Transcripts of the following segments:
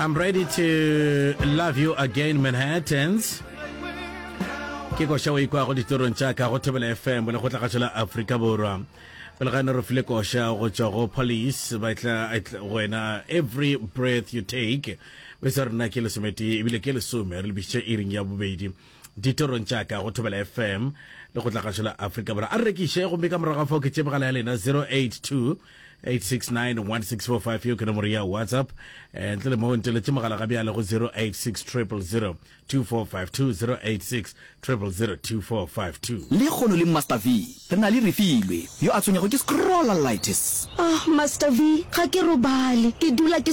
I'm ready to love you again Manhattans ke koša o ikwa go ditorong tša ka go thobela fm le go tla gašo la aforika borwa pele ga ne re file koša go tšwa go police ba tla wena every breath you take be se rena ke lesomete ebile ke lesome re lebisitše iring ya bobedi ditorong tša ka go thobela fm le go tla gašo la aforika borwa a rekiše gomme ka morago ga fao ke tsebagala ya lena 082 8691645 yo ke nomoro ya whatsapp eh, ntle le moo nteletše mogala ga bjale go 0860002452 le kgono le master v re na le refilwe yo a tshwenyago ke scrollalitis ah master v ga ke robale ke dula ke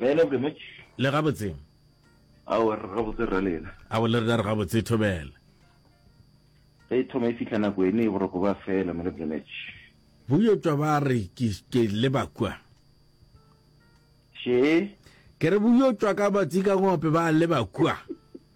Bjale ke motš. Le gabotse? Ao, re gabotse rra lena. Ao, le rena re gabotse, e thobela. Ge e thoma e fihla nako ene e boroko ba fela, Mele Bremetš. Boyotwa ba re ke, ke leba kua. Še? Ke re boyotwa ka batsi ka ngope ba leba kua.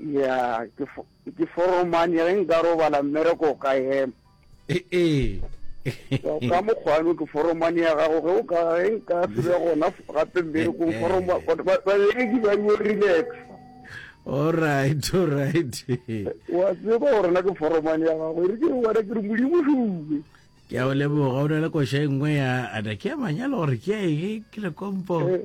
ya ke fo ke foromane ge nka robala mmereko o ka ema e e So, ka mokgwano ke foromane ya gago ge o ka ge nka se be gona f- gape mmerekong Eh, eh. foroma ba- ba- babereki ba yo relax all right all right wa tseba gore na ke foromane ya gago e re ke wena ke re modimo sume ke a o leboga o na le koša e nngwe ya ada ke ya manyalo gore ke ya ege ke le kompo Eh,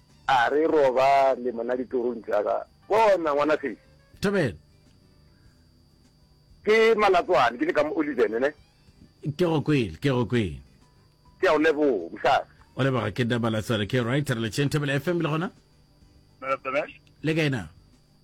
A re robale mona ditorong tša ka. Bona, ngwanafeši. Thobela. Ke Malatswane, ke le ka mo Oliven, ne? Ke go kwele, ke go kwele. Ke a o leboga, mosadi. O leboga ke nna Malatswane, ke right, re le tšeng Thobela FM le gona? Le kae na?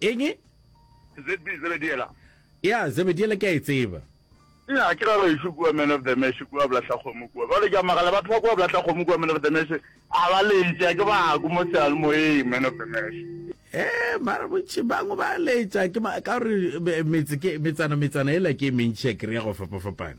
eng ZB Zebediela. ya Zebediela ke a e tseba. Nnyaa, ke ra gaešo kua Man of the Mesh, kua Blahlakgomo kua. Bjale ke a magala, batho ba kua Blahlakgomo kua Man of the Mesh a ba letša, ke bako mo seyalemoyeng Man of the Mesh. Ee, mara bontši bangwe ba letša, ke ka gore metse, ke metsana, metsana yela ke e mentši ya kry-a go fapafapana.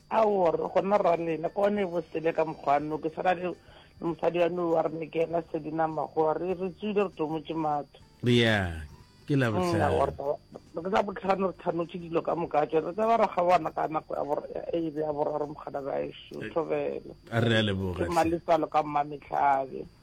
Aowa, re gona ralena ka one bo sele ka mokgwano, ke swana le mosadi wa no wa re ne ke ena sedi na magoa re re tswile re tomotše matho. Yeah, ke la bohlano. Re tla botlhano re thanotše dilo ka moka tšone re tsaba ra kgabana ka nako ya bor ya ebe ya boraro mogana gaešo thobela. A re a leboga. Ke mmaletsalo ka mmametlhabe.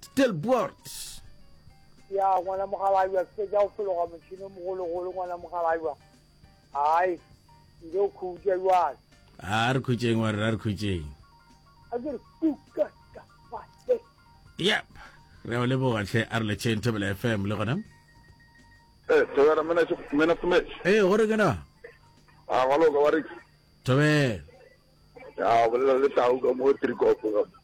Stilbert. Ya ngwana mogalajwa ke tša go fologa motšhino mogologolo ngwana mogalajwa. Hai. Njo khutša jwale. A re khutšeng wa re ra re khutšeng. A ke re kuka ka fase. Yep. Re a o leboga tlhe a re letšheng Thobela FM le gona. Eh, Thobela mena mena Sumech. Eh, gore ke na. A galo ka wa re. Thobela. Ya bolela le tau ka mo Trikopo.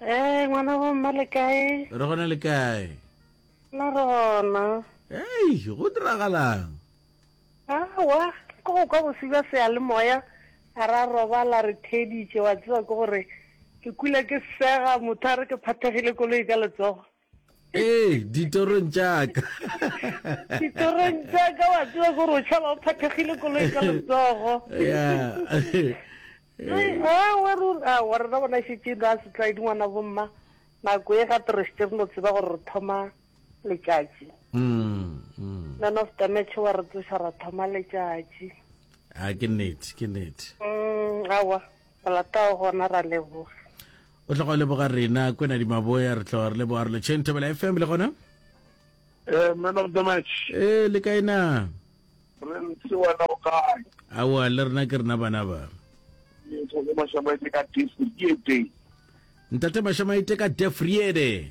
Ee, ngwana bo mma le kae? Re gona le kae? Na re gona. Ei, go diragalang? Awa, ke go kwa bosi ba seyalemoya, a ra robala re theditše, wa tseba ke gore ke kula ke sega, motho a re ke phathegile koloi ka letsogo. ee ditorong tšaka ditorong tšaka wa tseba gore o tšhaba o phathegile koloi ka letsogo awa rena bona šetšeng ra setlaedi ngwana bomma nako e gape re setse re no tseba gore re thoma letšatši mm, mm. man of damage wa re tsoša ra thoma letšatši a ke nnete ke nnete mm, awa Go latago gona ra leboga. O tla go leboga rena kwena di maboya re tla re leboga re le Chain Thabela FM le gona. Eh man of the match. Eh le kae na? Re ntse wena o kae? Awa le rena ke rena bana ba. Ke tshwere mashamaite ka Defriede. Ntate mashamaite ka Defriede.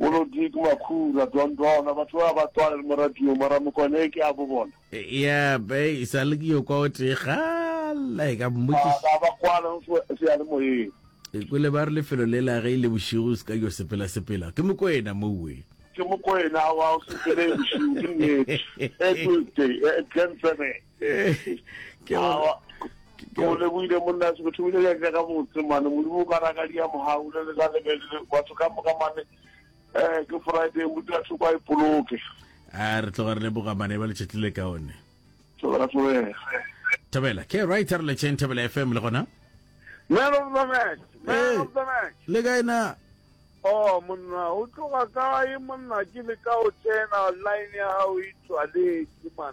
Bolo Dick Makhura, Don Dona, batho ba ba tswale le moradio, mara mokwane ke a bo bona. Ya, be e sa le ke yo kwa o tee gala e ka mmotšiša. Ba ba kwala go se ya le moyeng. E kwele ba re lefelo le la ge e le bošigo se ka yo sepela sepela. Ke mokwena mowe. Ke mokwena wa o sepele bošigo ke nnete. Tuesday, Glen Seven. ke go leboile monna se motho bile ya ka ka botse mane modimo ka raka dia mohau le le la le batho ka moka mane eh ke friday motho a thoko a ipoloke a re tloga re le boga mane ba le chetlile ka one tloga tloga thabela ke right re le chen thabela fm le gona man of the match man of the match le ga ina Oh monna o tloga kae monna ke le ka o tsena line ya hao e tswaletse man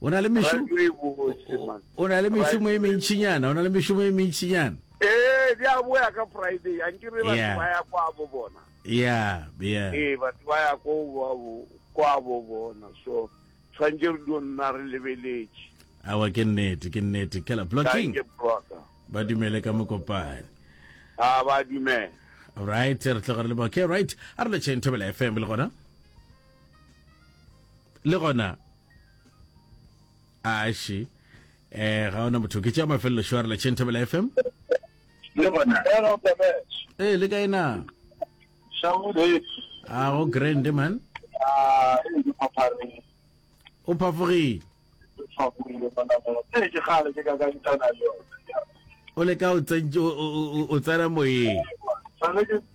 o na le mešomo o na le mešomo e mentšinyana o na le mešomo e mentšinyana ee di a boya ka friday a nke re batho ba ya kwa bo bona ya ya ee batho ba ya ko ba bo kwa bo bona so tshwantse re dio nna re lebeletše awa ke nnete ke nnete kela blocking ba dumele ka mokopane a ba dumele right re tloga re le okay right a re le chain thobela fm le gona le gona aši eh ga ona motho ke tša mafelelo shware la chentabela fm le gona ee le kae na a go grand man o phafogile o le ka o tsena moyeng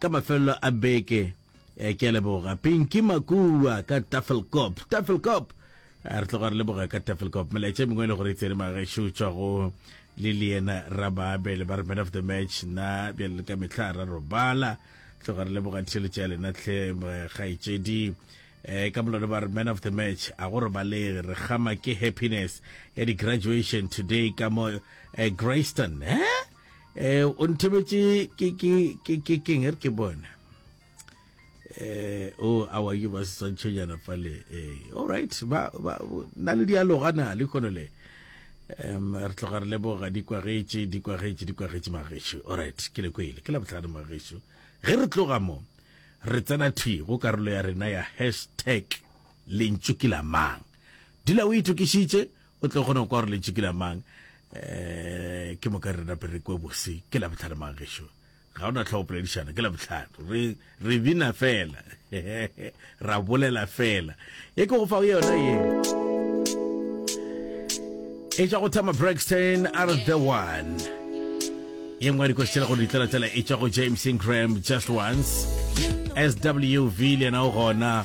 Ka mafelelo a beke, ke a leboga Pinky Makuwa ka Tafelkop. Tafelkop! Re tloga re leboga ka Tafelkop. Melaetša e mengwe e le gore e tsene magaešo tšwa go le le yena Rababe le ba re man of the match na bjale le ka mehla ra robala. Tloga re leboga theletša ya lena tlhe kgaetšedi. Eh, ka molone ba re man of the match a go robalege re kgama ke happiness ya di-graduation today ka mo eh, Grayston eh? eh o nthebetse ke ke ke ke ke nger ke bona eh o a wa ke ba setswantšho jana fa le eh all right ba ba na le dialoga na le kono le um re tloga re leboga di kwagetše di kwagetše di kwagetše magešu alright ke le kwele ke la botlhano magešu ge re tloga mo re tsena thwi go karolo ya rena ya hashtag lentšu ke la mang dula o itokišitše O tlo kgona go kwa gore lentšu ke la mang? Ee, ke moka re nape re kwe bose. Ke Labohlano mang gešo? Ga o na tlhogo poledišana, ke Labohlano. Re, re bina fela. Ra bolela fela. E ke go fa yona ye. E tšwa go Tama Braxton, Are the One. Ye nngwe ya dikoši tšela go di tlelatlela e tšwa go James Ingram, Just Once. SWV le yena o gona.